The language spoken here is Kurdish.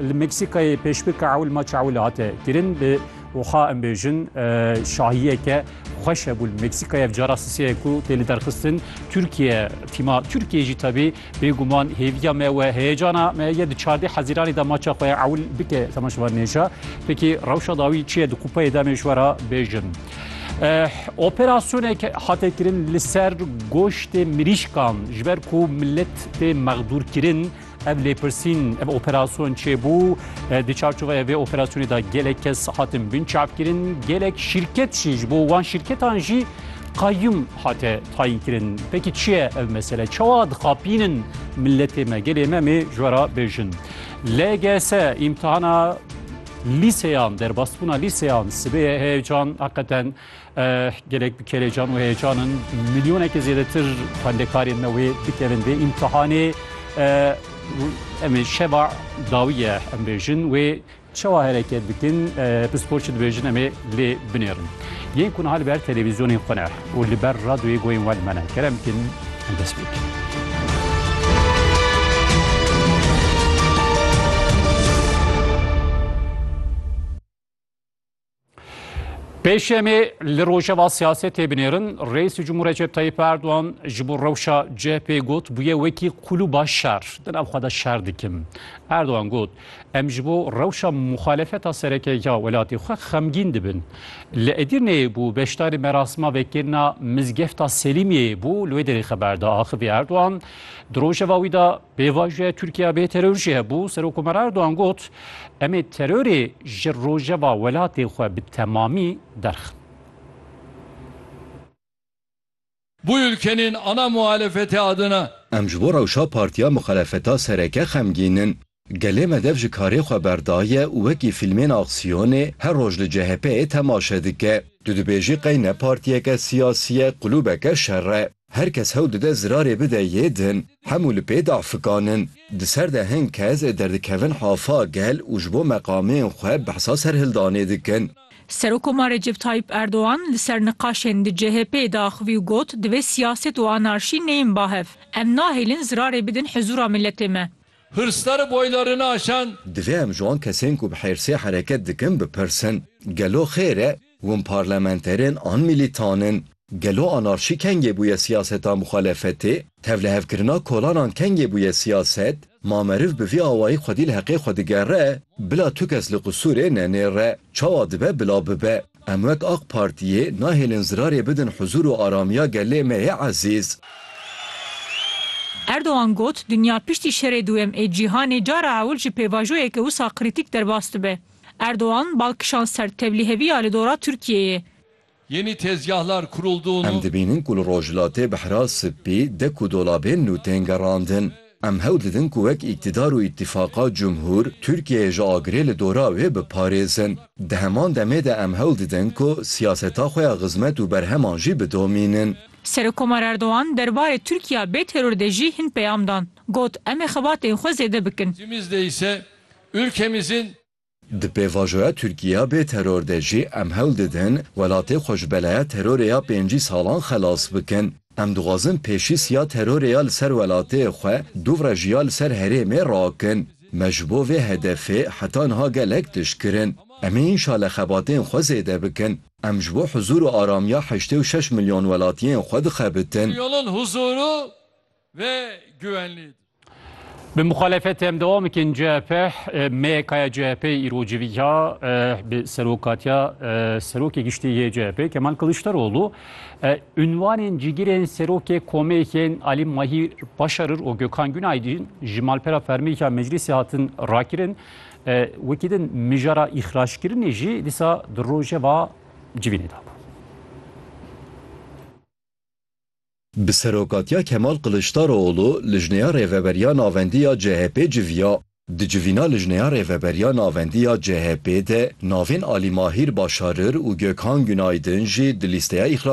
Li Meksîkayê pêşbirka ewil maça ewil hate kirin bi wiha em bêjin şahiyeke xweş hebû li Meksîkayê ev cara siseye ku tê li derxistin Tirkiye tîma Tirkiye jî tevî bêguman hêviya me we heyecana me ye di çardê hezîranê de maça xwe ye ewil bike sema ji van nêja pekî rewşa dawî çi ye di qupeyê de me ji we re bêjin. Operasyonek hate kirin li ser goştê mirîşkan ji ber ku millet tê mexdûrkirin Ev lêpirsîn, ev operasyon çêbû. Di çarçoveya vê operasyonê de gelek kes hatin binçavkirin. Gelek şîrket jî ji bo wan şîrketan jî qayyum hate tayînkirin. Peki çi ye ev mesele? Çawa dixapînin milletê me, gelê me mê ji wera bêjin. LGS îmtihana lîseyan, derbasbûna lîseyan sibê ye heyecan heqeten Gelek bi kelecan û heyecan in. Milyoneke zêdetir xwendekarên me wê bikevin vê îmtihanê. Em ê şeva dawî ye em bêjin wê çawa hereket dikin pisporçî dibêjin em ê lê binêrin. Yên ku niha li ber televîzyonên xwe ne û li ber radyoyê goyên we li me ne kerem bikin em dest pê bikin. Pêşemê li rojeva siyasetê binêrin Reîsê Cumhur Recep Tayyip Erdogan ji bo rewşa CHP got bûye wekî qulûba şer di nav xwe de şer dikim. Erdogan got em ji bo rewşa muxalefeta sereke ya welatê xwe xemgîn dibin. Li Edirneyê bû beşdarî merasima vekirina mizgefta Selîmiyeyê bû li wê derê xeber da axivî Erdogan di rojeva wî da Pêvajoya Tirkiye bê teror jî hebû. Serokomar Erdogan got, Em ê terorê ji rojeva welatê xwe bi temamî derxin. Bu ülkenin ana muhalefeti adına. Em ji bo rewşa partiya muxalefeta sereke xemgîn in. Gelê me dev ji karê xwe berdaye û wekî fîlmên aksiyonê her roj li CHP'ê temaşe dike. Tu dibêjî qey ne partiyeke siyasî ye, qulûbeke şer e. Her kes hewl dide zirarê bide yê din, hemû li pê dafikan in. Di ser de hin kes derdikevin hafa gel û ji bo meqamên xwe behsa serhildanê dikin. Serokomar Recep Tayyîp Erdogan li ser niqaşên di CHP'ê de axivî û got, Divê siyaset û anarşî neyên bahev. Em nahêlin zirarê bidin hizûra miletê me. Hırsları boylarını aşan. Divê em ji wan kesên ku bi hêrsê hereket dikin bipirsin, Gelo xêr e? Hûn parlamenterên an milîtan in? Gelo anarşî kengê bûye siyaseta muxalefetê? Tevlihevkirina kolanan kengê bûye siyaset? Ma meriv bi vî awayî xwedî li heqê xwe digere, bila tu kes li qisûrê nenêre, çawa dibe bila bibe. Em wek Aq Partiyê nahêlin zirarê bidin huzûr û aramiya gelê me yê ezîz. Erdogan got, Dinya piştî Şerê Duyem ê Cîhanê cara ewil ji pêvajoyeke wisa krîtîk derbas dibe. Erdogan, bal kişand ser tevlîheviya li dora Tirkiyeyê. Yeni tezgahlar kuruldu. Em dibînin ku li Rojhilatê bi hira spî, dek û dolabên nû tên gerandin. Em hewl didin ku wek îktidar û îtîfaqa cumhûr, Tirkiyeyê ji agirê li dora wê biparêzin. Di heman demê de em hewl didin ku siyaseta xwe ya xizmet û berheman jî bidomînin. Serokkomar Erdogan der barê Tirkiya bê teror de jî hin peyam dan. Got, Em ê xebatên xwe zêde bikin. Cimizde îse ülkemizin Di pêvajoya Tirkiya bê teror de jî em hewl didin welatê xwe ji belaya terorê ya pêncî salan xelas bikin. Em dixwazin pêşîs ya terorê ya li ser welatê xwe duvre jî ya li ser herêmê rakin. Me ji bo vê hedefê heta niha gelek tişt kirin. Em ê înşale xebatên xwe zêde bikin. Em ji bo huzûr û aramiya heştê û şeş milyon welatiyên xwe dixebitin. Milyonên huzûr û ve güvenliydi. Bi muxalefetê em devam bikin CHP, MYK'ya CHP'yê îro civiya bi serokatiya serokê giştî yê CHP'ê Kemal Kiliçdaroglu unwanên cîgirên serokê komêkên Alî Mahîr Başarir û Gökhan Günaydin ji malpera fermêka meclîsê hatin rakirin. Wekî din mijara îxraçkirinê jî dîsa di rojeva civînê de bû. Bi serokatiya Kemal Kiliçdaroğlu lijneya rêveberiya navendî ya CHP'ê civiya. Di civîna lijneya rêveberiya navendî ya CHP'ê de navên Alî Mahîr Başarir û Gökhan Günaydın jî di lîsteya îxrac